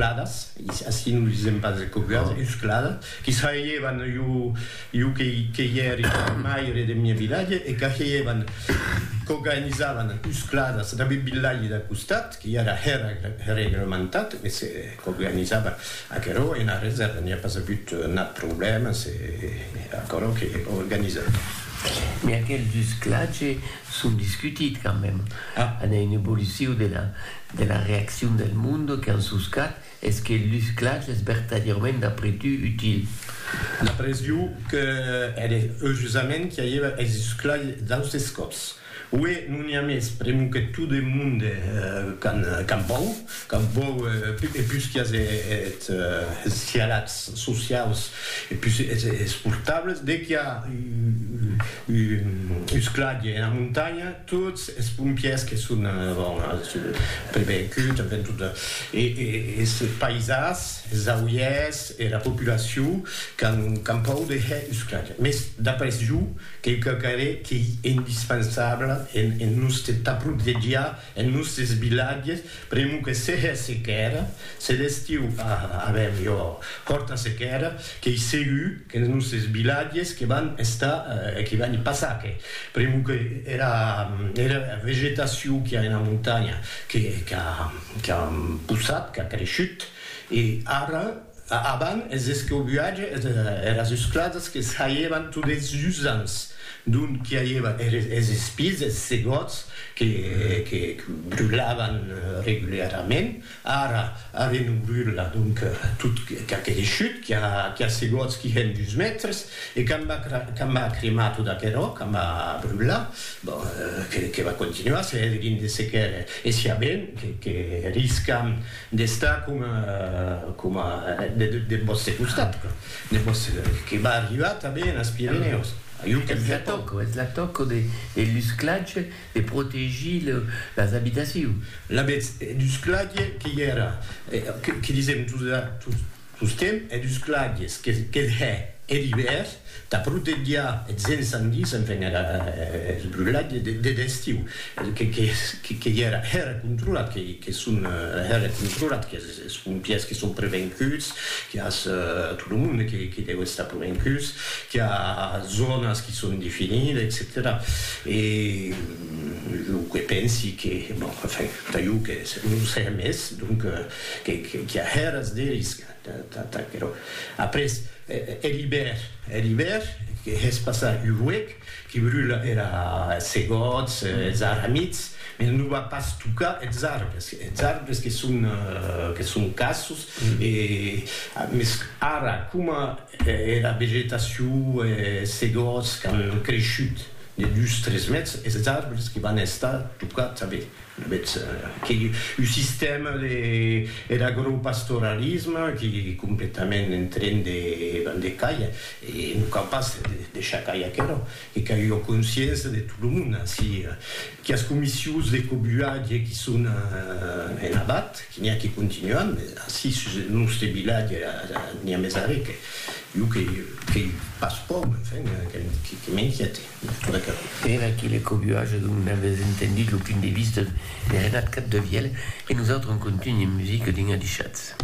Cladas, ací non lisèm pas coguadas, dus cladas, qui saheievan jo que i ère maire deth mieu vilatge e qu'ageievan, qu'organizavan dus cladas dab eth vilatge dau costat, qui ara hè reglementat, mès qu'organizava aquerò e ena resèrva n'i a pas avut nat problèmes e aquerò qu'organizava. Mès aquel dus clatge son discutit quand même an un evoluciu de la de la reaccion del monde qu'an soscat es que lus clash es vertadièrament d'après tu util? D'après iu que ère eujusament qu'i aièva es lus clash d'austes còps. Uè non i a mès pr'emu que tot eth monde qu'an qu'an pòur, qu'an pòur e pus qu'i as eth es dialègs sociaus e pus es portables de qu'i a Us cladie ena montanha, tots es pompièrs que son prevenguts, enfen tot, e es païsans, es auièrs, era populacion qu'an pòur de hèr us cladie. Mès d'après jo, qu'ei quauquarre qu'ei indispensable en noste taprot de diar En nustes vilatges, premu que seja sequèra, se d'estiu avèm jo fòrta sequèra, qu'ei segur qu'en nustes vilatges que van estar, que van i passar que, premu que era era vegetacion qu'i a ena montanha qu'a qu'a poussat, qu'a creishut, e ara, Avan es escaubuatges e eras uscladas que s'aievan tot es usants, dont qu'i aieva es espies, es segòts que brulavan regularament, ara arren non brula, donc tot qu'a creishut, qu'i a segòts qui hèn dus mètres, e quand va cremar tot aquerò, quand va brular, bon, que va continuar, se hèdrin de sequèles, e siabent que riscam d'estar coma coma deth vòste costat, deth vòste que va arribar tanben enes Pirenèus, jo que via tò. Es la tòca de de l'usclatge de protegir lo las abitacions. La betz d'usclatge que i era, que disèm tot Tosquem e dus claviers, que'th hè er ivèr tà protegiar eths encendis, enfin era brulhada deth estiu, que i era hèra controlat, que son hèra controlat, qu'es pompiers que son prevencuts, qu'i as tot lo monde que deu estar prevencuts, qu'i a zònas que son definides, etcetèra E jo que pensi que, bon, enfin, tà jo que non sé mès, donc, Qu'i a hèras de risca, t'aquerò. Après, er ibèr, er ibèr, que hè's passar un huec, qui brula era segòts, es aramids, mès non va pas tocar es arbres, es arbres que son, que son cassos, e, mès ara, coma era vegetacion, es segòts qu'an creishut de dus, tres mètres, es arbres que van estar tocats, a veir, Betz que un sistèma de er agropastoralisme qui completament en tren de ban de caia e non cau pas deishar cair aquerò que qu'a ua consciença de tot lo monde ací quias comissions de cobuatge qui son en abat qui n'i a qui continuan mes ací sus eth noste vilatge n'i a mes arré que jo que que pas pòu enfin que m'inquiète. Era aquele cobuatge donc n'avètz entendut lo punt de vista de Renat Capdevièlh e nosautres en contunh en musica d'un adishatz.